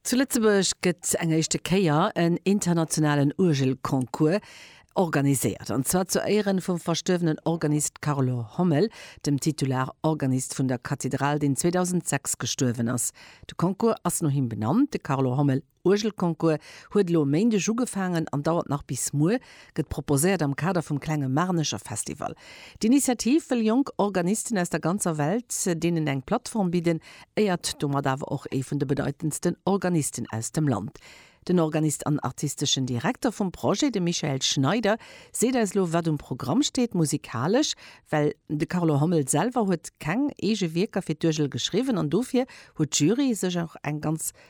Zu Lëtzebuerg gëtt eng éischte Kéier en internationalen Uergelconcours organiséiert, an zwar zu Éieren vum verstuerwenen Organist Carlo Hommel, dem Titularorganist vun der Kathedral, deen 2006 gestuerwen ass. De Concours ass no him benannt, de Carlo Hommel. Uergelconcours huet elo e Méindeg ugefaangen an dauert nach bis muer. Gëtt proposéiert am Kader vum klenge Marnecher Festival. D'Initiativ wëll jonk Organisten aus der ganzer Welt deenen eng Plattform bidden, éiert domat awer och ee vun de bedeitendsten Organisten aus dem Land. Den Organist an artisteschen Direkter vum Projet, de Michael Schneider, seet eis elo wat um Programm steet, musikalesch, well de Carlo Hommel selwer huet keng eege Wierker fir d'Uergel geschriwwen an dofir huet d'Jury sech och eng ganz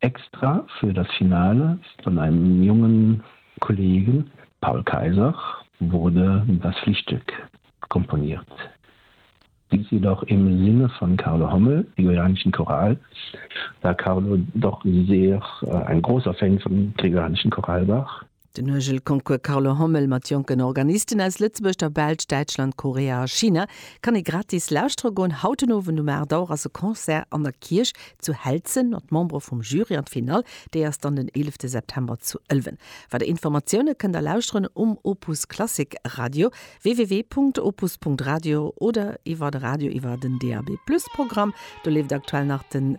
Extra für das Finale von einem jungen Kollegen, Paul Kayser, wurde das Frühstück komponiert. Dies jedoch im Sinne von Carlo Hommel, Gregorianischen Choral, da Carlo doch sehr ein großer Fan vom Gregorianischen Choral war. Den Uergelconcours Carlo Hommel mat jonken Organisten aus Lëtzebuerg, der Belsch, Däitschland, Korea a China kann ee gratis lauschtere goen. Haut den Owend um 8 Auer ass e Concert an der Kierch zu Helzen mat Membere vum Jury an d'Finall déi ass dann den 11 September zu Ëlwen. Weider Informatioune kënnt der lauschteren um Opus Klassik Radio, www.opus.radio, oder iwwer de Radio iwwer den DAB+ Programm. Do leeft aktuell nach den.